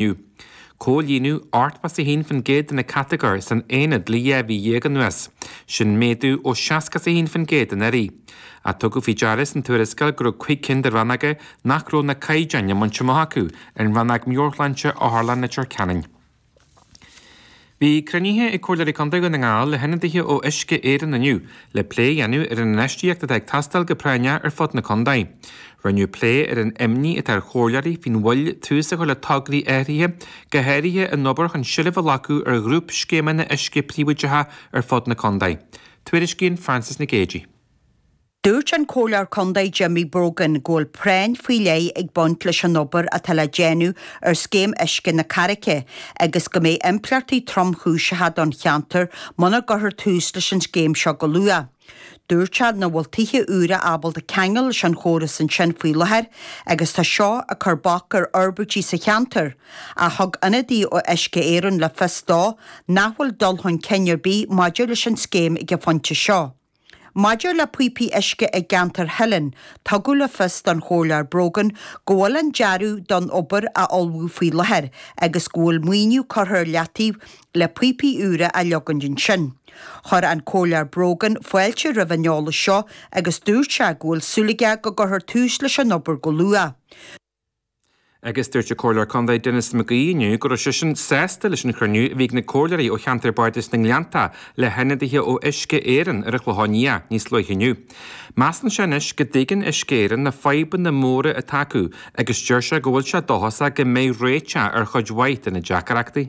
inniu. Comhlíonadh 81% de na catagóirí san aonad le dhá mhí dhéag anuas. Sin méadú ó 61% anuraidh. Ach tugadh faoi deara san tuarascáil go raibh cúig cinn de rannóga nach raibh na caighdeáin á mbaint amach acu, an Rannóg Meabhairshláinte, Otharlann Leitir Ceanainn. Bhí cruinnithe ag Comhairleoirí Contae Dhún na nGall le hionadaithe ó Uisce Éireann inniu le plé a dhéanamh ar an infheistíocht atá ag teastáil go práinneach ar fud na contae. Rinneadh plé ar an imní atá ar Chomhairleoirí faoin mhoill tús a chur le tograí áirithe, go háirithe an obair chun seilbh a ghlacadh ar ghrúpscéimeanna uisce príobháideacha ar fud na contae. Tuairiscíonn Frances Nic Géadaigh. Dúirt an Comhairleoir Condae Jimmy Brogan go bhfuil práinn faoi leith ag baint leis an obair atá le déanamh ar Scéim Uisce na Carraice agus go mbeidh impleachtaí tromchúiseacha don cheantar muna gcuirthear tús leis an scéim seo go luath. Dúirt sé nach bhfuil tithe úra ábalta ceangal leis an chóras ansin faoi láthair agus tá seo ag cur bac ar fhorbairtí sa cheantar, ach thug ionadaí ó Uisce Éireann le fios dó nach bhfuil dul chun cinn ar bith maidir leis an scéim ag an phointe seo. Maidir le píopaí uisce i gceantar Theilinn, tugadh le fios don Chomhairleoir Brogan go bhfuil an dearadh don obair á ullmhú faoi láthair agus go bhfuil maoiniú curtha ar leataobh le píopaí úra a leogaint ansin. Chuir an Comhairleoir Brogan fáilte roimh an eolas seo agus dúirt sé go bhfuil súil aige go gcuirfear tús leis an obair go luath. agus dúirt an Comhairleoir Condae Denis McGee inniu go raibh seisean sásta leis an chruinniú a bhí ag na comhairleoirí ó cheantar Bardais na nGleannta le hionadaithe ó Uisce Éireann ar an Chlochán Liath níos luaithe inniu. Measann sé anois go dtuigeann Uisce Éireann na fadhbanna móra atá acu agus deir sé go bhfuil sé dóchasach go mbeidh réiteach ar chuid mhaith de na deacaireachtaí.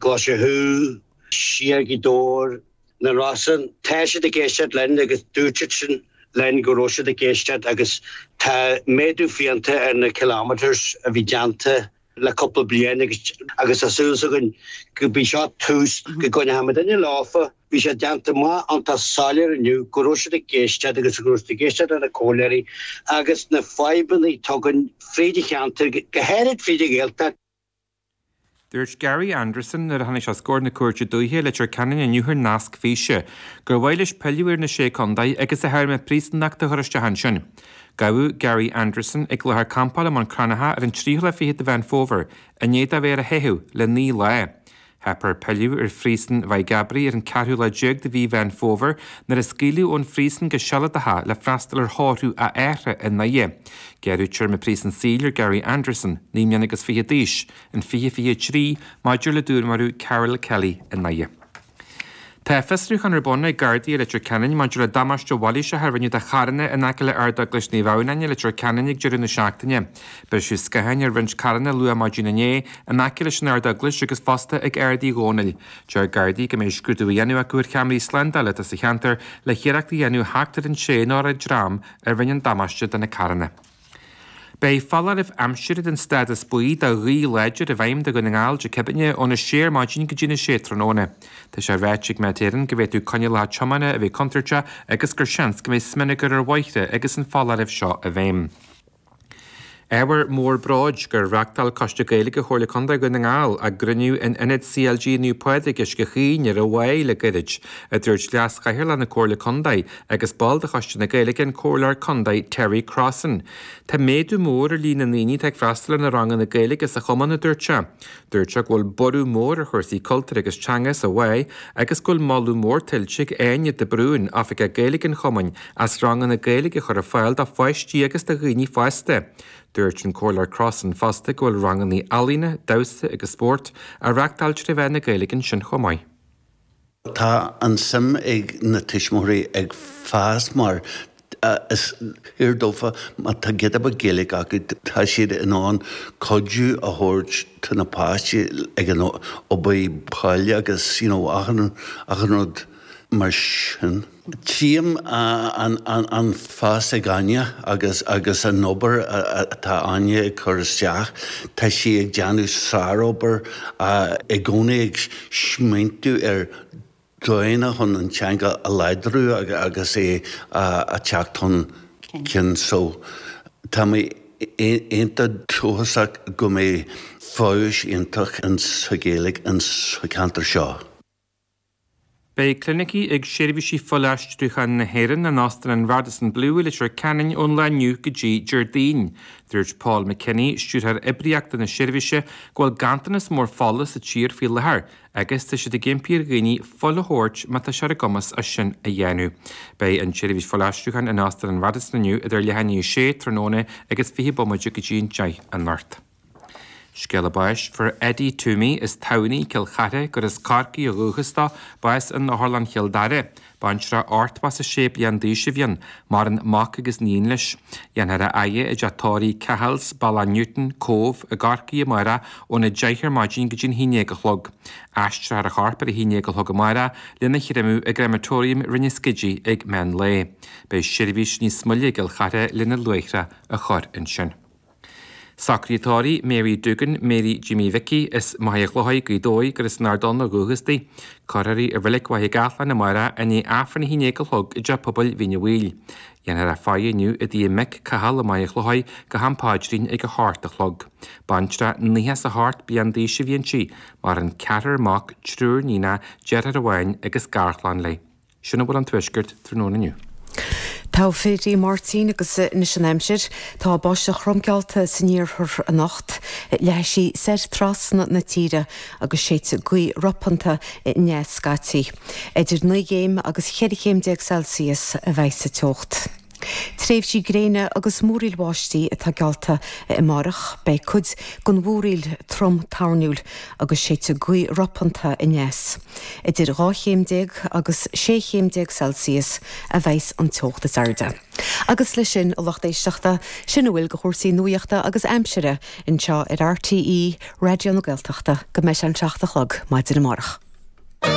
Tá sé thuas i nGaoth Dobhair, na Rosann. Tá siad ag éisteacht linn agus dúirt siad linn go raibh siad ag éisteacht agus tá méadú fiánta ar na kilometres a bhí déanta le cúpla bliain agus agus tá súil againn gurb é seo tús go gcoinneoidh muid inniu leofa bhí sé déanta maith an tá soiléir inniu go raibh siad ag éisteacht agus go raibh siad ag éisteacht leis na comhairleoirí agus na fadhbanna atá againn fríd an cheantar go háirid fríd an Ghaeltacht Dúirt Gary Anderson nuair a tháinig sé os comhair na Cúirte Dúiche i Leitir Ceanainn inniu thar nasc físe gur mhaith leis pilleadh ar na Sé Contae agus a théarma príosúnachta a chur isteach ansin. Gabhadh Gary Anderson ag láthair campála i mBun Cranncha ar an 23ú de Mheán Fómhair i ndiaidh dó bheith ar a theitheadh le naoi lá. Theip air pilleadh ar phríosún Mhaigh gCabraí ar an ceathrú lá déag de mhí Mheán Fómhair nuair a scaoileadh ón phríosún go sealadach é le freastal ar thórramh a athara i nDoire. Gearradh téarma príosún saoil ar Gary Anderson, naoi mbliana agus fiche d'aois, in 2023 maidir le dúnmharú Karol Kelly i nDoire. Tá fiosrúchán ar bun ag Gardaí i Leitir Ceanainn maidir le damáiste mhailíseach a rinneadh do charranna in aice le Ardeaglais Naomh Adhamhnáin i Leitir Ceanainn ag deireadh na seachtaine. Briseadh scatháin ar roinnt carranna luath maidin inné in aice leis an Ardeaglais agus fosta ag Ard Uí Dhónaill. Deir Gardaí go mbeidh scrúdú á dhéanamh acu ar cheamaraí slándála atá sa cheantar le hiarracht a dhéanamh theacht ar an té nó an dream a rinne an damáiste do na carranna. Beidh foláireamh aimsire den stádas buí do ghaoth láidir i bhfeidhm do Dhún na nGall Dé Céadaoine óna sé ar maidin go dtí na sé tráthnóna. Tá sé ráite ag Met Éireann go bhféadfadh coinníollacha tiomána a bheith contúirteach agus gur seans go mbeidh smionagar ar bhóithre agus an foláireamh seo i bhfeidhm. Ábhar mór bróid gur reachtáil Coiste Gaeilge Chomhairle Contae Dhún na nGall a gcruinniú in Ionad CLG Naomh Pádraig, Uisce Chaoin ar an Mhaigh le gairid, a dúirt Leas-Chathaoirleach na Comhairle Contae agus ball de Choiste na Gaeilge an Comhairleoir Contae Terry Crossan. Tá méadú mór ar líon na ndaoine atá ag freastal ar na ranganna Gaeilge sa chumann, a dúirt sé. Dúirt sé go bhfuil borradh mór ar chúrsaí cultúir agus teanga sa Mhaigh agus go bhfuil moladh mór tuillte ag Áine de Brún, Oifigeach Gaeilge an chumainn, as ranganna Gaeilge a chur ar fáil do pháistí agus do dhaoine fásta. Dúirt an Comhairleoir Crossan fosta go bhfuil ranganna ealaíne, damhsa agus spóirt á reachtáil tré mheán na Gaeilge ansin chomh maith. Tá an suim ag na tuismitheoirí ag fás mar is fíor dófa má tá giota Gaeilge acu tá siad in ann cuidiú a thabhairt do na páistí ag an obair bhaile agus you know achan rud mar sin. Tchím an fás ag Áine agus agus an obair atá Áine ag cur isteach. Tá sí ag déanamh sárobair i gcónaí ag smaointiú ar dóigheanna chun an teanga a láidriú agus é a theacht chun cinn. So tá mé iontach dóchasach go mbeidh feabhas iontach sa Ghaeilge sa cheantar seo. Beidh clinicí ag Seirbhísí Fuilaistriúcháin na hÉireann in Óstan an Radisson Blu i Leitir Ceanainn ón lá inniu go dtí Déardaoin. Dúirt Paul McKinney, Stiúrthóir Oibríochta na seirbhíse, go bhfuil ganntanas mór fola sa tír faoi láthair agus tá siad ag impí ar dhaoine fuil a thabhairt má tá sé ar a gcumas é sin a dhéanamh. Beidh an tseirbhís fuilaistriúcháin in Óstan an Radisson inniu idir a leath i ndiaidh a sé tráthnóna agus fiche bomaite go dtí an deich anocht. Scéala báis fuair Eddie Twomey as Tamhnaigh Cill Charthaigh gur as Corcaigh ó dhúchas dó, bás in Otharlann Chill Dara. Baintreach ochtó is a sé bliain d'aois a bhí ann. Maireann mac agus iníon leis. Déanfar a fhaire i dteach tórraimh Cahill's, Bealach Newtown, Cóbh, i gCorcaigh amárach ón 10 ar maidin go dtí an haon déag a chlog. Aistreofar a chorp ar a haon déag a chlog amárach lena chréamadh i gCrematorium Rinn an Scidígh ag meán lae. Beidh seirbhís níos moille i gCill Charthaigh lena luaithreadh a chur ansin. Socruithe tórraimh Mary Doogan, Mary Jimmy Mhicí, as Machaire Chlochair Gaoth Dobhair gur as an Ard Donn ó dhúchas di. Cuirfear í i Reilig Mhachaire Gathlán amárach i ndiaidh Aifreann a haon déag a chlog i dTeach Pobail Mhín Uí Bhaoill. Déanfar a faire inniu i dtigh a mic Cathal i Machaire Chlochair go ham paidrín ag a hocht a chlog. Baintreach nócha is a hocht bliain d'aois a bhí inti. Maireann ceathrar mac, triúr níonacha, deartháir amháin agus garchlann léi. Sin a bhfuil ón tuaisceart tráthnóna inniu. Togha fir Aodh Máirtín agus anois an aimsir. Tá báisteach throm geallta san iarthar anocht. Leathfaidh sí soir trasna na tíre agus séidfidh gaoth ropánta aneas scaití. Idir naoi gcéim agus cheithre chéim déag Celsius a bheidhs an teocht. Tréimhsí gréine agus múraíl bháistí atá geallta amárach. Beidh cuid den mhúraíl trom toirniúil agus séidfidh gaoth ropánta aneas. Idir dhá chéim déag agus sé chéim déag Celsius a bheidhs an teocht is airde. Agus le sin a lucht éisteachta, sin a bhfuil de chúrsaí nuaíochta agus aimsire anseo ar RTÉ Raidió na Gaeltachta go mbeidh sé an seacht a chlog maidin amárach.